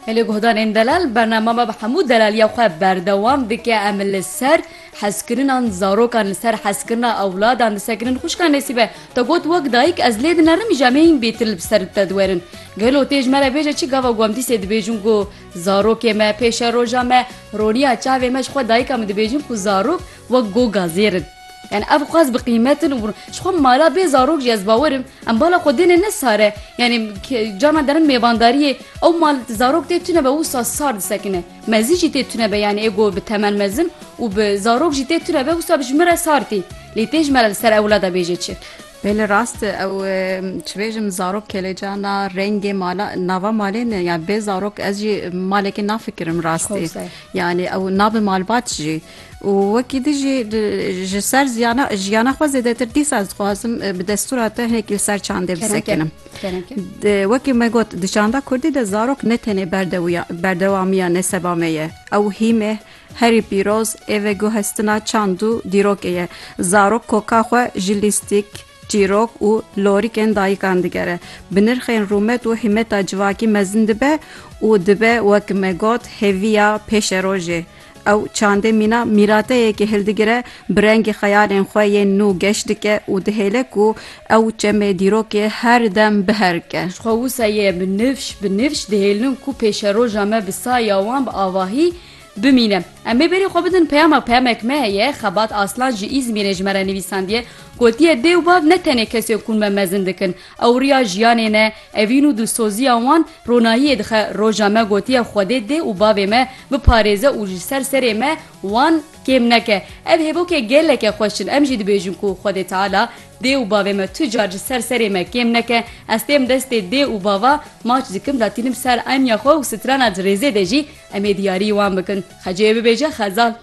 Hêlê guhdarên delal bernama me bi hemû delaliya xwe berdewam dike. Em li ser hezkirinan zarokan li ser hezkirina ewladan disekinin xwişka Nesîbe te got wek dayik ez lê dinerim ji em hê hîn bêtir li bi ser te diwerin. Gelo tê ji me re bêje çi gava ku em dîsê dibêjin ku zarokê me pêşeroja me roniya çavê me ji xwe dayika min dibêjin ku zarok wek goga zêr in. Yani ev xwaz bi qîmetin û ji xwe mala bê zarok jî ez bawer im em bala xwe dêne ne sare yani cana derin mêvandariyê ew mal zarok tê tune be wisa sar disekine mezî jî tê tune be yani êgo bi temel mezin û bi zarok jî tê tune be wisa ji min re sar tî lê tê ji me li ser ewlada bêjê çi Belê rast ew çibêjim zarok kelêcana rengê mala nava malê ne ya bê zarok ez jî malekê nafikirim rastê yani ew nabi malbat jî û wekî di jî ji ser ziyana jiyana xwe zêdetir dîsa ez dixwazim bi destûra te hinekî li ser çandê bisekinim wekî me got di çanda kurdî de zarok ne tenê berdewûya berdewamiya neseba me ye ew hî me herî pîroz ê veguhestina çand û dîrokê ye zarok koka xwe ji lîstîk çîrok û lorîkên dayikan digere bi nirxên rûmet û hîmeta civakî mezin dibe û dibe wekî me got hêviya pêşerojê Ew çandê mîna mîrateyekê hildigire, bi rengê xeyalên xwe yên nû geş dike û dihêle ku ew çemê dîrokê her dem biherike. Ji xwe wisa ye bi nifş bi nifş dihêlin ku pêşeroja me bi saya wan bi avahî bimîne. Em ê berî xwe bidin peyama peyamek me heye. Xebat Aslan ji Îzmîrê ji me re nivîsandiye, gotiye dê û bav ne tenê kesên ku me mezin dikin, Ew riya jiyanê ne, evîn û dilsoziya wan ronahiyê dixe, roja me gotiye Xwedê dê û bavê me biparêze û ji ser serê me wan kêm neke. Ev hêvokê geleke xweş in, em jî dibêjin ku Xwedê Teala dê û bavê me tu car ji ser serê me kêm neke. Ez têm destê dê û bava maç dikim da tînim ser enya xwe û strana di rêzê de jî em ê diyarî wan bikin. Xecê bibêje xezal.